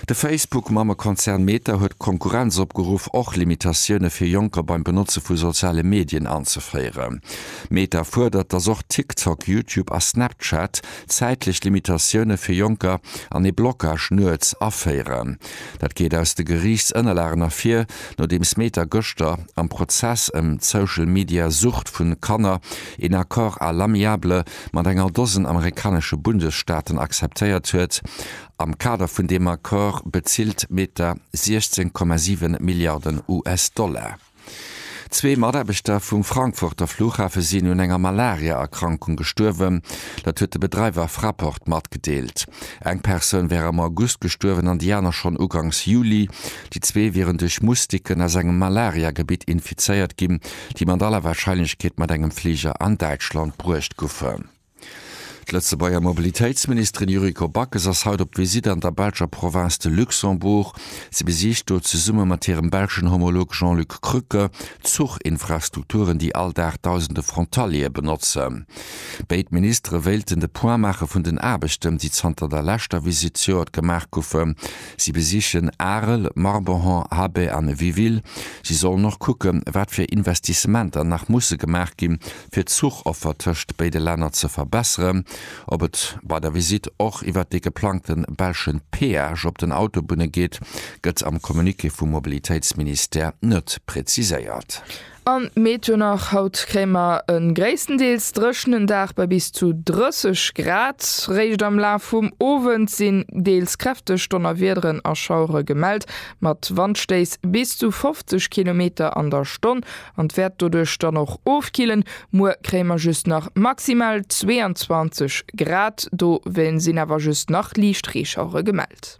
De Facebook-Mammekonzern Meta huet d'Konkurrenz opgeruff, och Limitatioune fir Jonker beim Benotze vu soziale Medien anzeféieren. Meta fuerdert, datt och TikTok, YouTube a Snapchat zäitlech Limitatioune fir Jonker an ee Blockage nuets aféieren. Dat geet aus de Geriichtsënnerlagen ervir, nodeems Meta gëschter am Prozess ëm d'Social-Media-Sucht vu Kanner een Accord à l'amiable mat enger Dosen amerikanesche Bundesstaaten akzeptéiert huet, Am Kader vun deem Accord bezilt Meta 16,7 Milliarden US-Dollar. Zwee Mataarbechter vum Frankfurter Flughafe sinn un enger Malaria-Erkrankung gestuerwen. Dat huet de Bedreiwer Fraport matgedeelt. Eng Persoun wär am August gestuerwen an déi aner schonn ugangs Juli. Déi zwee wieren duerch Moustiquen aus engem Malaria-Gebitt infizéiert ginn, déi mat aller Warscheinlechkeet mat engem Fliger an Däitschland bruecht goufen. D'Lëtzebuerger Mobilitéitsministerin Yuriko Backes ass haut op d'Visitt an der belscher Provënz de Luxembourg. Si besicht do zesumme mat hirem belschen Homolog Jean-Luc Krücke d'Zuchinfrastrukturen, déi all Dag dausende Frontaliere benotzen. Béid Ministere wéilten de Point maache vun den Aarbechten, déi zanter der leschter Visitt zejoert gemaach goufen. Si besichen Arel, Marborhan, Habay an Viville. Si sollen och kucken, wat fir Investissementer nach musse gemaach ginn, fir d'Zuchoffer tëscht béide Länner ze verbesseren, ob et bei der Visitt och iwwert dee geplangte belschen Peage op den Autobunne geet, gëtt am Communiqué vum Mobilitéitsministère net präziséiert. Am Meteo nach, Haut kréie mer e gréisstendeels dréchenen Dag bei bis zu 30 Grad. Réischt am Laf vum Owend sinn deels kräfteg Donnerwiederen a Schauere gemellt, mat Wandstéiss bis zu 50 Kilometer an der Stonn. An d'wäert doduerch dann och ofkillen. Muer kréie mer just nach maximal 22 Grad, dowéint sinn awer just nach liicht Reeschauere gemellt.